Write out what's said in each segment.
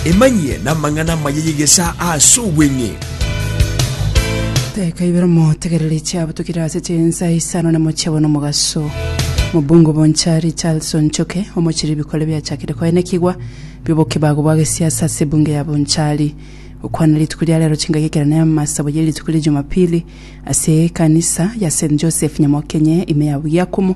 Emanyie namang'ana amaya y'egesaa ase obweng'e. Daika ibere motegereri chiabutokire ase chinsa isano na mochie bono mogaso. Mobungo Bonchari Charles Onchoke omochiri bikore biachakire koenekigwa biobokebago bwa gesiasa ase ebunge ya Bonchari. Gokwana rituko ria rero chingaki ekero ne amasabo ye rituko ria Jumapili ase ekanisa ya St Joseph Nyamokenye ime ya Bugiakomo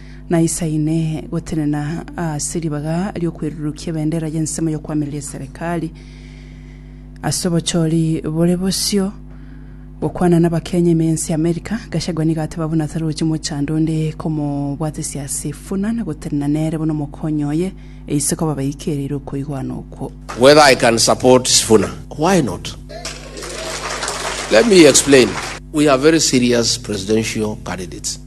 naisaine gotenena ase ribaga ri'okwerurukia ebendera y'ensemo y'okoamereria eserekari ase obochori bore bosio gokwana nabakenya ime ense y'Amerika. Gachagua nigo ateba buna tarochi mochando onde komobwatesia ase efuna na gotenena nere buna omokonyi oye e isiko babaikereire okoigwana okwo. Whether I can support Sifuna? Why not? Let me explain. We are very serious presidential candidates.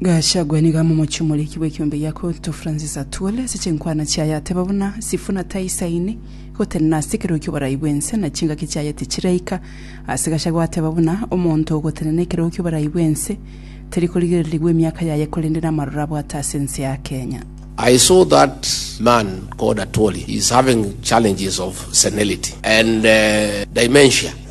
Gachagua nigo amomochie omoriki bw'ekiombe gia Kyoto Francis Atwoli ase chinkwana chiaye ateba buna Sifuna taisaini gotenena ase ekerogo ki'oborai bw'ense na chingaki chiaye tichiraika ase Gachagua ateba buna omonto ogotenena ekerogo ki'oborai bw'ense teri korigererigwa emiaka yaye korende namaroro abwate ase ense ya Kenya. I saw that man called Atwoli is having challenges of senility and dementia.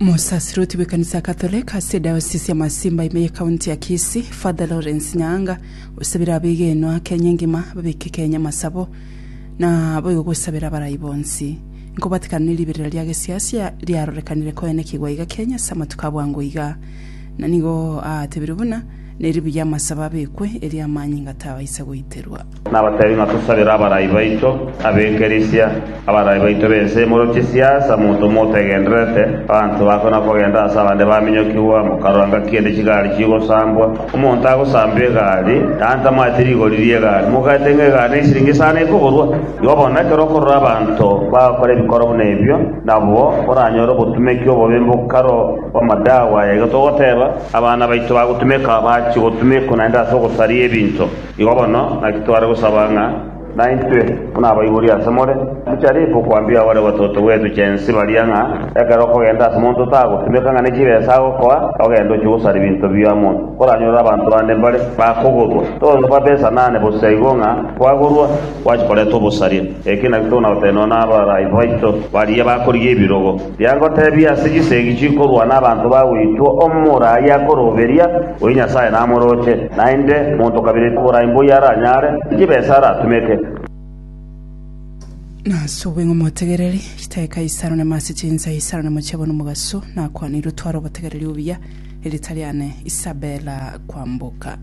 Omosaserdoti bw'ekanisa ya Katholek ase edayosisi ya Masimba ime ye kaunti ya Kisii, Father Lawrence Nyaanga osabire abegenwa Kenya engima babeke Kenya amasabo na boigo gosabera abarai bonsi. Nkobatikana ne riberera ria gesiasia riarorekanire koenekigwa iga Kenya ase amatuko a bwango iga. Na nigo aatebire buna neri buya amasabo abekwe erio amanyinga tabaisa goiterwa. Nabateebie ng'a tosabere abarai baito ab'ekerisia, abarai baito b'ense imorochie siasa, monto motegendererete abanto bakwe na kogenda ase abande baminyokigwa, mokarora ngaki ende chigari chigosambwa, omonto agosamba egari, yaani tamanyeti rigori ri'egari, mogaete ng'a egari nesiringi isano ekoborwa. Igo bono ekero okorora abanto bagokora ebikoro buna ebio, nabwo oranyore obotumeki obobe mbokaro bw'amadawa aya. Igo togoteeba, abana baito bagotumeka, bachie gotumekwa naende ase ogosaria ebinto. Igo bono naki tware gosaba ng'a naintwe buna abaibori ase more, tocharigia gokwambia bare batotogwetwe chensi baria ng'a ekero okogenda ase monto tagotimeka ng'a ne chibesa agokoa, ogende ochie gosara ebinto bio amo oranyorere abanto bande mbare bakogorwa. Togosaba besa nane bosio igo ng'a kwagorwa gwachi koretwa obosaria. Eki naki tokona gotenenwa nabaraai baito baria bakorigia ebirogo. Riagoteebia ase chisegi chikorwa nabanto ba goitwa omomura aye akoroberia, oyo Nyasae namoroche, naende monto kabere borai mboyio aranyare, chibesa aratumeke. Nasubwe ng'a motegereri, chitae Kaisaro nyama ase chinsa, Isaro nyama chiabo nomogaso, nakwanirwe twara obotegereri obuya, erita riane Isabela kwamboka.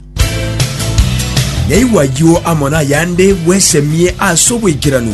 Yaigwa ayio amo nayande, bwesemie ase obwekeranu.